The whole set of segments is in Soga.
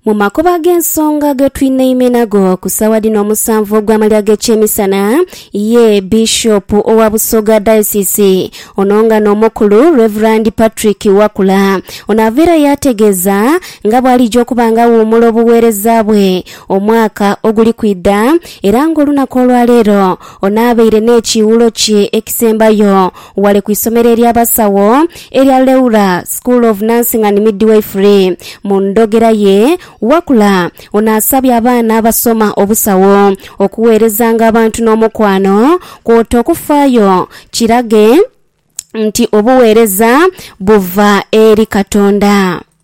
Mu makubo ag'ensonga ge twinaime nago ku saawa dhino omusanvu ogw'amalya g'ekyemisana ye Bishop owa Busoga Diocese ono nga n'omukulu Reverand Patrick Wakula ono ava era yaategeeza nga bw'alija okuba nga awuumula obuweereza bwe omwaka oguli kwidha era ng'olunaku olwaleero ono abaire n'ekiiwulo kye ekisembayo ghale ku isomero ery'abasawo erya Leura School of Nursing and Midwifery. Mu ndhogera ye, Wakula ono asabye abaana abasoma obusawo okugheerezanga abantu n'omukwano kwota okufaayo kirage nti obugheereza buva eri Katonda.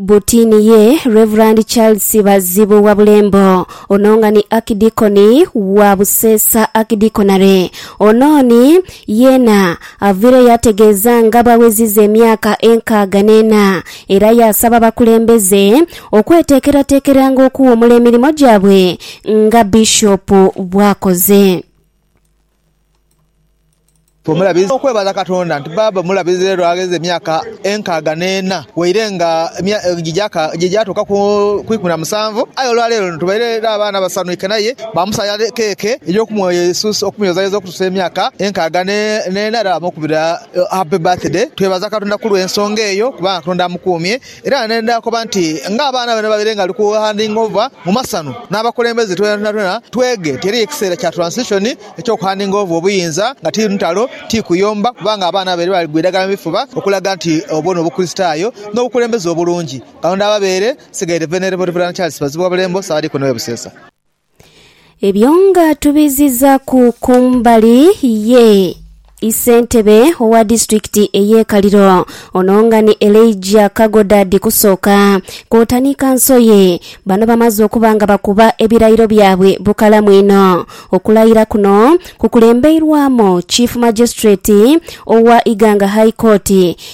Buti ni ye Rev. Charles Bazibu Wabulembo, ono nga ni Akidikoni wa Buseesa Akidikonare. Ono ni yeena avaireyo yaategeeza nga bw'aweziza emyaka enkaaga n'ena era yaasaba abakulembeze okweteekerateekeranga okuwumula emirimo gyabwe nga Bishop bw'akoze. Bw'omulabiriza okwebaza Katonda nti bbaabwe omulabirizi lero agheze emyaka enkaaga n'ena waire nga gye gyatuuka ku ikumi na musanvu, aye olwaleero luno tubaire n'abaana abasanhuike n'aye baamusaagha keeke ey'okumweyozayoza okutuusa emyaka enkaaga n'ena era baamukubira Happy Birthday. Twebaza Katonda ku lw'ensonga eyo kubanga Katonda amukuumye. Era ne ndhakoba nti, Ng'abaana bano babaire nga bali ku handing over mu masanu, n'abakulembeze twonatwona tweghe ti eriyo ekiseera kya transition eky'oku handing over obuyinza, nga ti ntalo, ti kuyomba, kubanga abaana babaire bali gwa idagala mu bifuba okulaga nti obwo n'obukristaayo n'obukulembeze obulungi. Katonda ababeere. Nsigaire Venerable Rev. Charles Bazibuwabulembo, Ssaabadiikoni w'e Buseesa. Ebyo nga tubizizaku kumbali ye isentebe owa disitulikiti eye Kaliro ono nga ni Elijah Kagoda Dhikusooka kwota ni kanso ye bano bamaze okuba nga bakuba ebirayiro byabwe bukalamu inho. Okulayira kuno kukulembeirwamu Chief Magistrate owa Iganga High Court